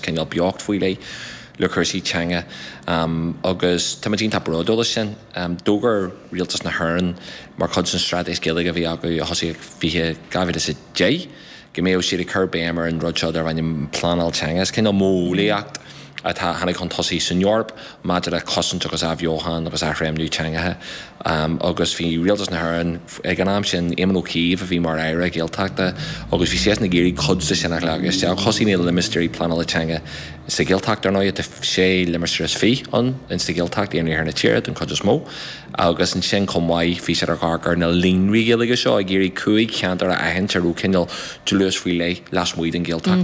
cineál beocht faoi leith le cúrsaí teanga agus táimid iontach bródúil as sin. D'fhógair Rialtas na hÉireann, mar chuid den straitéis Gaeilge a bhí acu a thosaigh ag 2010, go mbeadh siad ag cur béim ar an rud seo darbh ainm pleanáil teanga. Is cineál modheolaíocht atá, a tháinig chun tosaigh san Eoraip, maidir le cosaint agus athbheochan agus athréimniú teangacha agus bhí Rialtas na hÉireann ag an am sin, Éamon Ó Cuív a bhí mar Aire Gaeltachta agus bhí seisean ag iarraidh cuid de sin a ghlacadh isteach. Thosaigh na limistéirí pleanála teanga sa Ghaeltacht, ar ndóighe, tá sé limistéar is fiche ann sa Ghaeltacht, iar-iarthar na tíre den chuid is mó, agus ansin chomh maith bhí siad ag amharc ar na líonraí Gaeilge seo ag iarraidh cúig cheantar a aithint a raibh cineál dlús faoi leith lasmuigh den Ghaeltacht.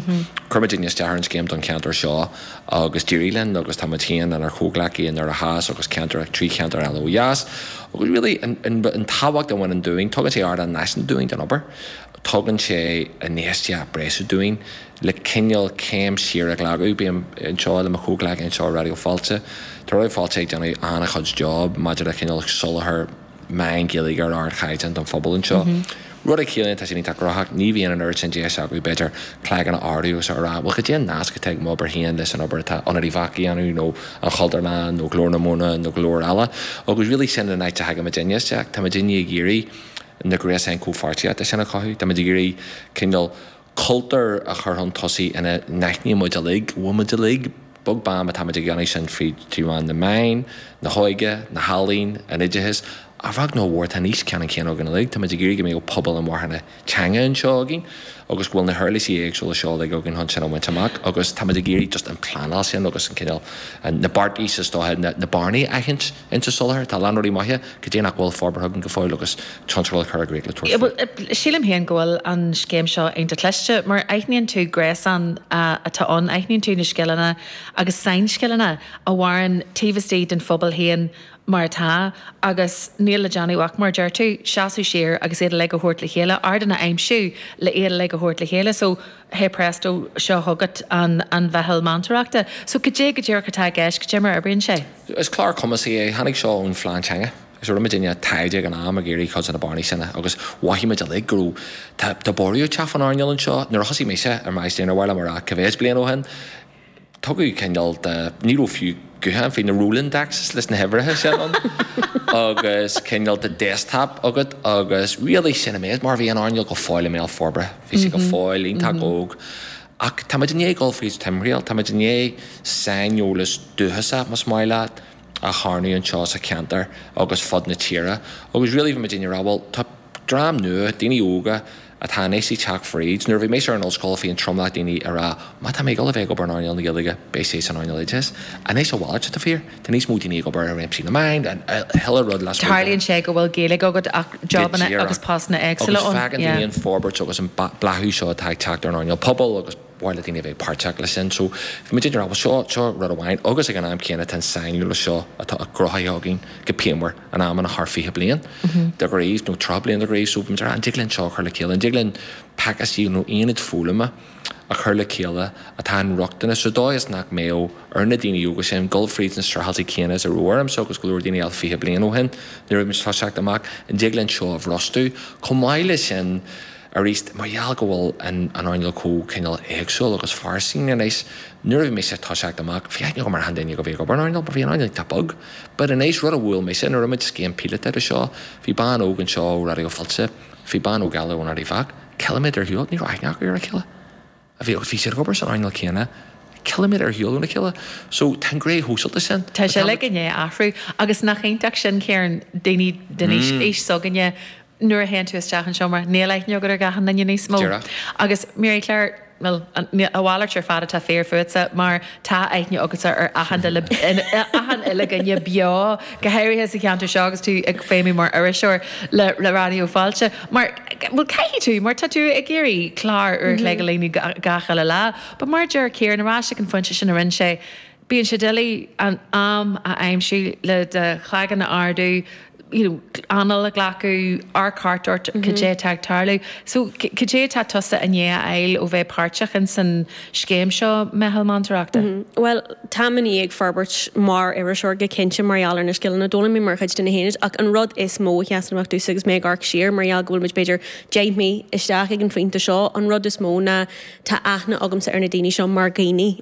Chuir muid isteach ar an scéim don cheantar seo. agus d'éirigh linn agus tá muid féin lenár gcomhghleacaithe i nDoire Theas agus ceantar ach trí cheantar eile ó dheas agus really an tábhacht a bhaineann dúinn, tugann sé ardán náisiúnta dúinn don obair, tugann sé infheistíocht bhreise dúinn le cineál céim siar a ghlacadh. Bheinn anseo le mo chomhghleacaí anseo i Raidió Fáilte, tá Raidió Fáilte ag déanamh an-chuid job maidir le cineál soláthar, meán Gaeilge ar ardchaighdeán don phobal anseo. Rud a chiallaíonn, tá siad iontach gnóthach, ní bhíonn an oiread sin deise acu, b'fhéidir, cloigeann a ardú agus a rá, bhuel, cad é an nasc atá ag m'obair féin leis an obair atá Ionad Uíbh Eachach a dhéanamh nó an Chultúrlann nó Glór na Móna nó go leor eile. Agus really sin an áit a thagann muidinne isteach. Tá muidinne ag iarraidh na gréasáin comhpháirtíochta sin a chothú, táimid ag iarraidh cineál, cultúr a chur chun tosaigh ina n-aithníonn muid uilig, go bhfuil muid uilig, beag beann má tá muid ag déanamh sin fríd trí mheán na meáin, na hóige, na healaíon, an oideachais, a bheag nó a mhór, tá an fhís ceannan céanna againn uilig, tá muid ag iarraidh go mbeadh pobal inmharthana teanga anseo againn agus go bhfuil na huirlisí éagsúla seo uilig againn chun sin a bhaint amach agus tá muid ag iarraidh just an pleanáil sin agus an cineál, na beartais is dóiche, na bearnaí a aithint. ins an soláthar, cá bhfuil na rudaí maithe, cad é nach bhfuil forbartha againn go fóill agus plean a chur i gcrích le tabhairt faoi. Bhuel, sílim féin go bhfuil an scéim seo iontach cliste, mar aithníonn tú gréasán atá ann, aithníonn tú na scileanna agus sainscileanna a mhaireann taobh istigh den phobal féin mar atá agus níl le déanamh ach, mar a deir tú, seasamh siar agus iad uilig a thabhairt le chéile, ardáin a aimsiú le iad uilig a thabhairt le chéile. So. Hey presto, seo chugat an mheitheal meantóireachta. So, cad é go díreach atá i gceist? Cad é mar a oibríonn sé? Is clár cumasaithe é. Tháinig seo ón Phlean Teanga. So, rinne muid rud beag taighde ag an am, ag iarraidh cuid de na bearnaí sin a, agus mhothaigh muid uilig go raibh, tá, tá borradh ag teacht faoin earnáil anseo. Nuair a thosaigh mise ar m'aistear, níor mhaith liom a rá cé mhéid bliain ó shin, tugadh cineál de, ní raibh fiú guthán ach na Rolodexes leis na huimhreacha sin ann, agus cineál de desktop agat agus really sin an méid, mar bhí an earnáil go fóill i mbéal forbartha, bhí sé go fóill iontach óg. Ach táimid i ndiaidh dul fríd timthriall, táimid i ndiaidh saineolas dúchasach, más maith leat, a charnadh anseo sa cheantar agus ar fud na tíre agus really bhí mé ag déanamh, ag rá bhuel tá dream nua, daoine óga atá anois ag teacht fríd. Nuair a bhí mise ar an ollscoil bhí an tromlach daoine ag rá má tá mé ag dul a bheith ag obair in earnáil na Gaeilge beidh sé san earnáil oideachais. Anois a mhalairt atá fíor, tá níos mó daoine ag obair i réimsí na meáin and achan uile rud lasmuigh den. Tarlaíonn sé go bhfuil Gaeilge agat ach jobanna agus postanna éagsúla ann, yeah. Go díreach, agus tagann an fhorbairt agus an bláthú seo atá ag teacht ar an earnáil pobail agus. mhaith le daoine a bheith páirteach leis sin. So bhí muid ag rá bhuel seo, seo rud amháin agus ag an am céanna tá an sainiúlacht seo atá cruthaithe againn go pianmhar in amanna thar fiche bliain de ghraft nó tríocha bliain de ghraft. So bhí muid ag rá an dtig linn seo a chur le chéile, an dtig linn pacáistí nó aonaid foghlama a chur le chéile atá inrochtana sa dóigh is nach mbeadh ar na daoine óga sin dul fríd na streachailtí céanna is a raibh ormsa agus go leor daoine eile fiche bliain ó shin nuair a bhí muid ag toiseacht amach. An dtig linn seo a bhrostú? Chomh maith leis sin. Arís, mar gheall go bhfuil an earnáil chomh cineál éagsúil agus fairsing anois, nuair a bhí mise ag toiseacht amach, bhí aithne agam ar achan duine a bhí ag obair in earnáil, mar bhí an earnáil iontach beag. But anois, rud a bhuail mise, nuair a rinne muid scéim píolótach de seo, bhí bean óg anseo ó Raidió Fáilte, bhí bean óg eile ón Áras Uí Chonghaile, ciliméadar ar shiúl, ní raibh aithne acu ar a chéile. a bhí agus bhí siad ag obair san earnáil céanna, ciliméadar ar shiúl óna chéile. So, tá an gné shóisialta sin. Tá sé de ghnáth ag athrú. Agus nach iontach sin, Ciarán, daoine den aois s'againne, nuair a théann tú isteach i seomra, níl aithne agat ar achan duine níos mó. Díreach. Agus, Mary Claire, bhuel, a mhalairt ar fad atá fíor fútsa, mar. Tá aithne agatsa ar achan uile dhuine beo, go háirithe sa cheantar seo agus tú ag feidhmiú mar iriseoir le le Raidió Fáilte. Mar, bhuel, caithfidh tú, mar tá tú ag iarraidh clár uair a chloig a líonadh gach uile lá. But mar a deir Ciarán, ar ais ag an phointe sin a rinne sé, bíonn sé doiligh an am a aimsiú le do chloigeann a ardú, you know anáil a ghlacadh, amharc thart ort, cad é atá ag tarlú? So, cad é atá tusa i ndiaidh a fháil ó bheith páirteach in san scéim seo, Meitheal Meantóireachta? Bhuel, tá mé i ndiaidh forbairt mar iriseoir go cinnte mar gheall ar na scileanna a d'fhoghlaim mé mar chuid de na haonaid ach an rud is mó a sheasann amach domhsa agus mé ag amharc siar, mar gheall go bhfuil muid b'fhéidir deich mí isteach ag an phointe seo, an rud is mó ná tá aithne agamsa ar na daoine seo mar dhaoine.